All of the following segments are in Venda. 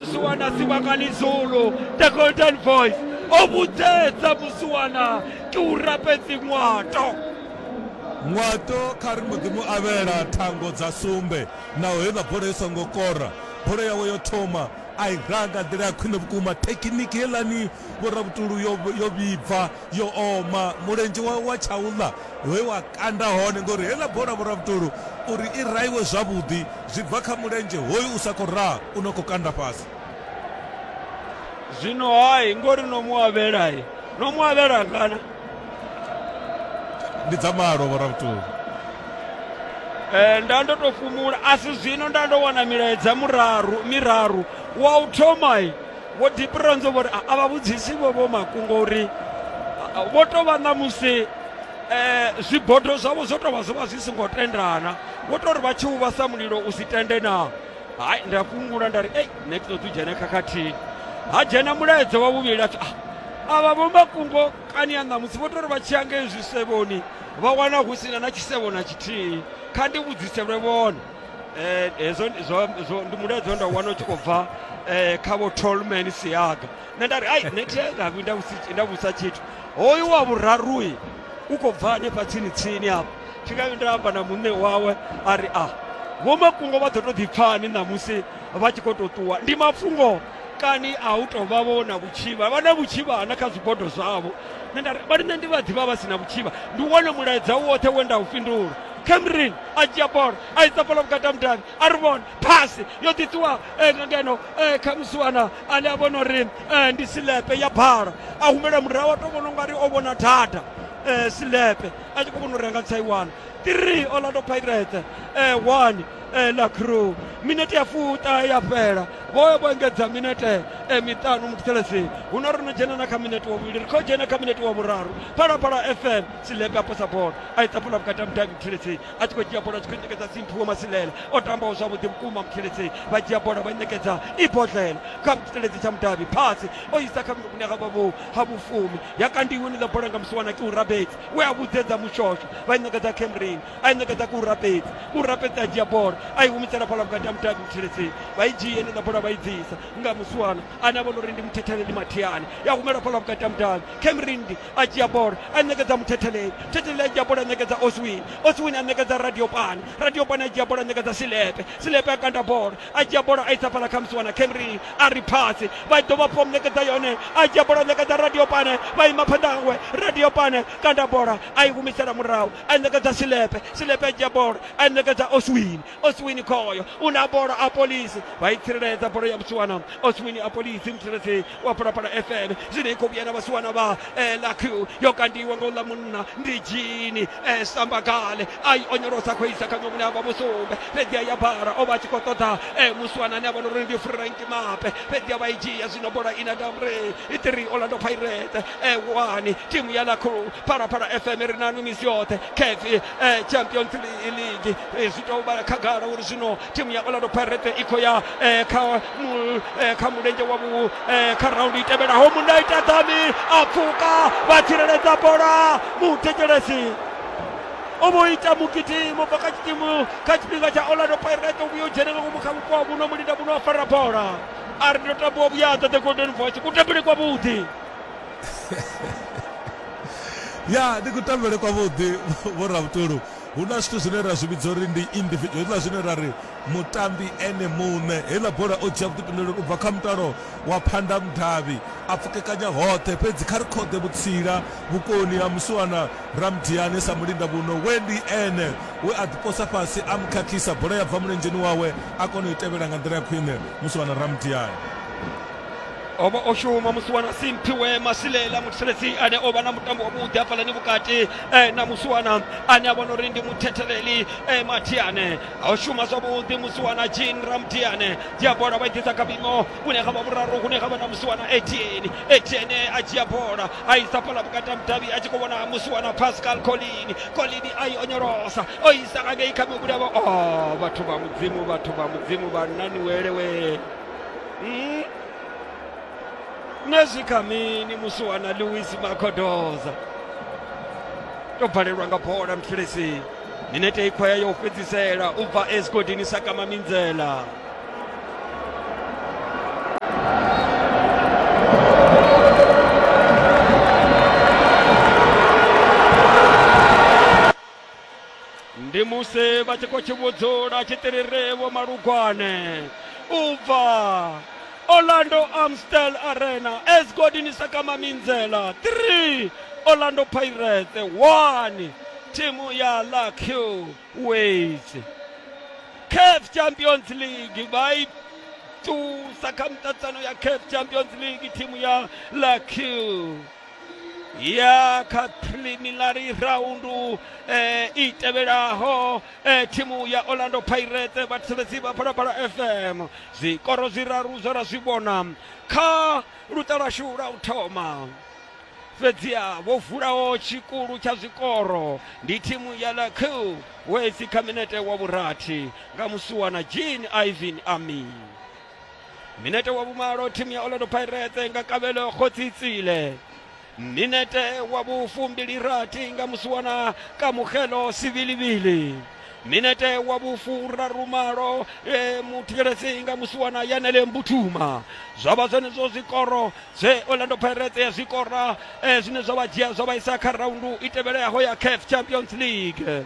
musiwana sibakani zulu the golden voice o vhudzetsa musiwana ke u rapedzi ṅwato ṅwato kha ri mudzimu avhela thango dza sumbe naho heiḽa bola i songo kora bola yawe yo thoma a i ranga nḓila ya khwine vhukuma thekiniki heiḽani vhorabutulu yo vhibva yo oma mulenzhe wa, wa tshaula we wa kanda hone ngori heiḽa bola vhoravhutulu uri i raiwe zwavhuḓi zwi bva kha mulenzhe hoyu u sa khou raha u no khou kanda fhasi zwino hai ngori no mu avhelai no mu avhela ngana ndi dza malo vhoravhutulu Eh, nda ndo to fumula asi zwino nda ndo wana milaedza muraru miraru wa u thomai vho dipronzo vho ri a vha vhudzisi vho vho makungo uri vho tou vha na musi um zwibodo zwavho zwo tou vha zwo vha zwi songo tendana vho tou ri vha tshi uvhasa mulilo u si tende na hai ndi a fhungula nda ri ei nṋe ti ṱoḓi u dzhene khakhathini ha dzhena mulaedza wa vhuvhili a ah, avha vho makungo kani ya ṋamusi vho tou ri vha tshi ya ngei zwisevhoni vha wana hu sina na tshisevho na tshithihi kha ndi vhudziselwe vhone eh, hezwo ndi- zwo zwo- ndi mulaedza we nda wana u tshi khou bva eh, kha vho tolman siaga nṋe nda ri ai nṋe thi nga vhi nda vhusi- nda vhusa tshithu hoyu wa vhurarui u khou bva hanefha tsini tsini afho tshikavhi nda amba na muṋe wawe a ri a vhomakungo vha ḓo tou ḓipfani ṋamusi vha tshi khou tou ṱuwa ndi mafhungo kani a u tou vha vho na vhutshivha vha na vhutshivha na kha zwibodo zwavho nṋe nda ri vha ri nṋe ndi vha ḓivha vha si na vhutshivha ndi wone mulaedza woṱhe we nda u fhindula camerin a dzhia bola a isa bola vhukati ha mudavhi a ri vhona phasi yo ḓiṱuwa eh, nga ngeno eh, kha musiwana ane a vhona uri eh, ndi silepe ya bhala a humela murahu a to vhona ungari o vhona data eh, silepe a tshi khou vhona uri a nga tsaiwana 3 orlando pirates eh, 1 eh, la crew minete ya fuṱa ya fhela vhoyo vho engedza minete eh, miṱanu muthelesi huno ro no dzhena na kha minete wa vhuvhili ri khou dzhena kha minete wa vhuraru phalaphala fm silega posa bola a ita bola vhukati ha mudavhi mutheledzei a tshi khou dzhia bola a tshi khou ṋekedza simphuwo masilela o tambaho zwavhuḓi vhukuma mutheledzei vha dzhia bola vha ṋekedza i bodlela kha tshiteledzi tsha mudavhi phasi o isa kha vhune ha vha vho ha vhufumi ya kandiwe niḽa bola nga musiwana ke u rabedzi we a vhudzedza mushosho vha i ṋekedza camrin a i ṋekedza ke u rabedzi u rabedzi a dzhia bola a i humisela fhala vhukati ha mudavhi mutheledzei vha i dzhie niḽa bola vha i bvisa nga musiwana ane a vha uri ndi muthetheleli mathiani ya humela fhala vhukati ha mudavhi camrin a dzhia bola a ṋekedza muthetheleni thetheleni a dzhia bola a ṋekedza oswin oswin a ṋekedza radiopane radiopane a dzhia bola a ṋekedza silepe silepe a kanda bola a dzhia bola a isa fhala kha musi wana camry a ri phasi vha dovha fom ṋekedza yone a dzhia bola a ṋekedza radiopane vha ima phanḓa hawe radiopane kanda bola a i humisela murahu a ṋekedza silepe silepe a dzhia bola a ṋekedza oswin oswini khoyo u na bola a polisi vha i tsireledza bola ya vhusiwana oswini a polisi mutsireledzi wa phalaphala fm zwino i khou vhuya na vhasiwana vha eh, laq yo kandiwa nga uḽa munna ndi jini eh, sambagale a i onyolosa khou isa kha nyomune a vha musumbe fhedzi a ya bara o vha a tshi khou ṱoḓa eh, musiwana ane a vha na uri ndi frank mape fhedzi a vha i dzhia zwino bola ina damre i tiri orlando pirate eh, wani timu ya laq phalaphala fm ri nanu misi yoṱhe kefi eh, champions Li- league Eh, zwi tou vhala khagala uri zwino timu ya orlando pirate i khou ya eh, kha mu- eh, kha mulenzhe wa vhu eh, kha raundi i tevhelaho munna ita dami a pfuka vha tsireledza bola muthetshelesi o vho ita mugidimo bva kha tshikimu kha tshifhinga tsha orlando pirate u vhuya u dzhene nga ngomu kha vhupo ha vhuno mulinda vhuno a fara bola a ri ndo tambiwa vhuyaḓa the golden voice kutambele kwavhuḓi ya ndi kutambele kwavhuḓi vho rabutulu hu na zwithu zwine ra zwi vhidza uri ndi individual hezwiḽa zwine ra ri mutambi ene muṋe heiḽa bola o dzhia vhuḓifhinduleli u bva kha mutalo wa phanda mudavhi a pfukekanya hoṱhe fhedzi kha ri khoḓe vhutsila vhukoni ha musiwana ramdiane sa mulinda vhuno we ndi ene we a ḓiposa fhasi a mukhakhisa bola ya bva mulenzheni wawe a kona u i tevhela nga nḓila ya khwine musiwana ramdiane o vha o shuma musi wana simphiwe masilela muthetshelesi ane o vha na mutambo wavhuḓi hafhalani vhukati eh, na musi wana ane a vhona uri ndi muthetheleli eh, mathiane o shuma zwavhuḓi musi wana jean ramdiane dzhia bola vha i ḓisa kha vhuimo vhune ha vha vhuraru hune ha vha na musi wana etieni etiene a dzhia bola a isa fhala vhukati ha mudavhi a tshi khou vhona musi wana pascal colini colini a i onyolosa o isa ngangei kha mivhulevho o vhathu vha mudzimu vhathu vha mudzimu vha naniwelewe Mm. na swika mini musi wana lewis makodoza to balelwa nga bola mfilisini minete ikhwaya yo fhedzisela u bva esgodini sakama minzela ndi musi vha tshi khou tshi vhudzula tshiṱirirevo malugwane u bva orlando amstel arena esgodini sakama minzela 3 orlando pirates 1 thimu ya luck ways caf champions league vha i tusa kha miṱaṱisano ya caf champions league thimu ya luck ya kha preliminary raundu eh, i tevhelaho eh, thimu ya orlando pirate vhathetshelesi vha phalaphala fm zwikoro zwiraru zwe ra zwi vhona kha luṱa lwashu lwa u thoma fhedziha vho vulaho tshikulu tsha zwikoro ndi thimu ya lakiu wesi kha minete wa vhurathi nga musuwana jean ivan ami minete wa vhumalo thimu ya orlando pirates nga kavhelo khotsitsile minete wa vhufumbili rathi nga musiwana kamugelo sivilivili minete wa vhufurarumalo e, muthikeleledzi nga musiwana yanele mbuthuma zwa vha zwenezwo zwikoro zwe orlando pirates ya zwikora e, zwine zwa vha dzhia zwa vha isa kha raundu i tevheleaho ya caf champions league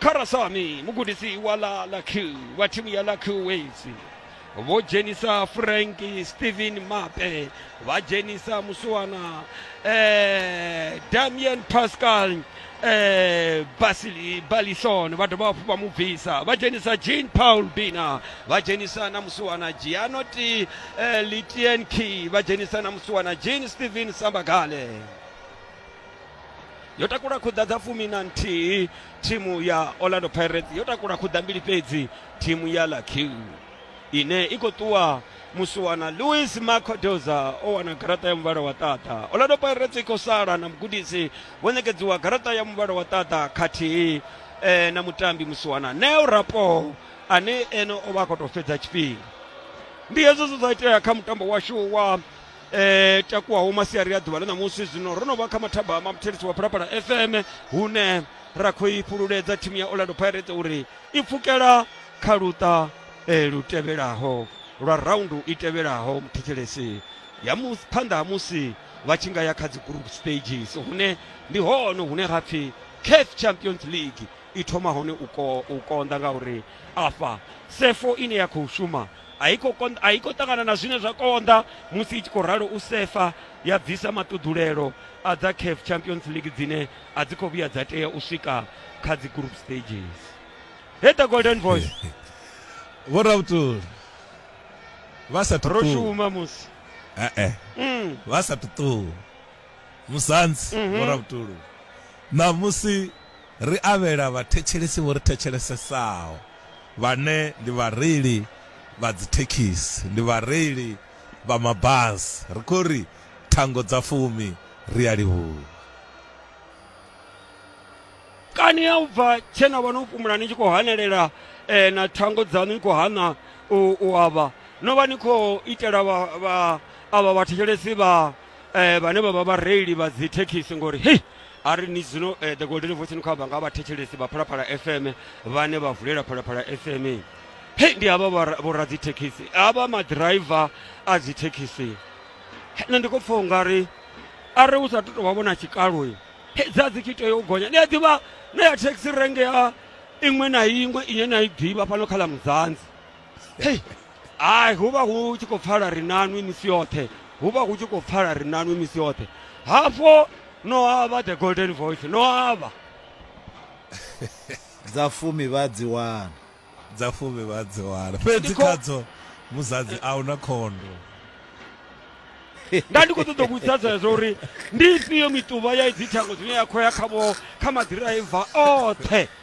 Kharasani, mugudisi wa ḽa ḽa Q wa thimu ya ḽa Q Waves, vho dzhenisa Frank Steven Mape, vha dzhenisa musiwana eh, Damien Pascal eh, Basili Balison, vha dovha hafhu vha mu bvisa, vha dzhenisa Jean Paul Bina, vha dzhenisa na musiwana Gianoti eh, Litienki, vha dzhenisa na musiwana Jean Steven Sambagale. yo takula khuḓa dza fumi na nthihi thimu ya orlando pirates yo takula khuḓa mbili fhedzi thimu ya lakiu ine i khou ṱuwa musiwana louis macodoza o wana garaṱa ya muvhala wa ṱaṱa orlando pirates i khou sala na mugudisi vho ṋekedziwa garaṱa ya muvhala wa ṱaṱa khathihi eh, na mutambi musiwana neo rapo ane ene o vha a khou tou fhedza tshifhinga ndi hezwo zwe zwa itea kha mutambo washu wa e, takuwaho masiari a ḓuvha ḽa ṋamusi zwino ro no vha kha mathaba ma muthelisi wa phalaphala fm hune ra khou i fhululedza thimu ya orlando pirates uri i pfukela kha luṱa e, lu tevhelaho lwa raundu i tevhelaho muthethelesi ya mu- phanḓa ha musi vha tshi nga ya kha dzi group stages hune ndi hone hune ha pfi caf champions league i thoma hone u ko u konḓa ngauri afha sefo ine ya khou shuma a i khou ṱangana na zwine zwa konḓa musi i tshi khou ralo u sefa ya bvisa maṱuḓulelo a dza caf champions league dzine a dzi khou vhuya dza tea u swika kha dzi group stages he the golden voice vho rabutuli vha sa ro shuma musi eh, eh. Mm. vha sa tuṱuwa Musanzi Mhm. vho Ravhutulu. Ṋamusi ri avhela vhathetshelesi vho ri thetshelesesao vhane ndi vhareili vha dzithekhisi, ndi vhareili vha mabasi. Ri khou ri thango dza fumi ri a livhuwa. kani ya u bva tshe na vha no fhumula ni tshi khou hanelela eh, na thango dzaṋu ni khou hana u, u avha no vha ni khou itela vha, vha, avha vhathetshelesi vha eh, vhane vha vha vhareili vha dzi thekhisi ngori hei a ri ni zwino eh, the golden voice ni khou amba nga vhathetshelesi vha phalaphala fm vhane vha vulela phalaphala fm hei ndi havha vhora- vhoradzithekhisi havha maḓiraiva a dzi thekhisi Hei, nṋe ndi khou pfa u nga ri a ri u sa tu tou vha vhona tshikalo hei dza dzi tshi tea u gonya ni a ḓivha na ya thekhisi renge ya iṅwe na iṅwe ine na i ḓivha fhano kha ḽa mudzanzi hei ai hu vha hu tshi khou pfala ri nanwi misi yoṱhe hu vha hu tshi khou pfala ri nanwi misi yoṱhe hafho no avha the golden voice no avha dza fumi vha dzi wana dza fumi vha dzi wana fhedzi khadzo muzadzi a huna khondo nda ndi khou ṱoḓa vhudzisa zwezwo uri ndi ifhio mituvha ya idzi thango zwine ya khou ya khavho kha maḓiraiva oṱhe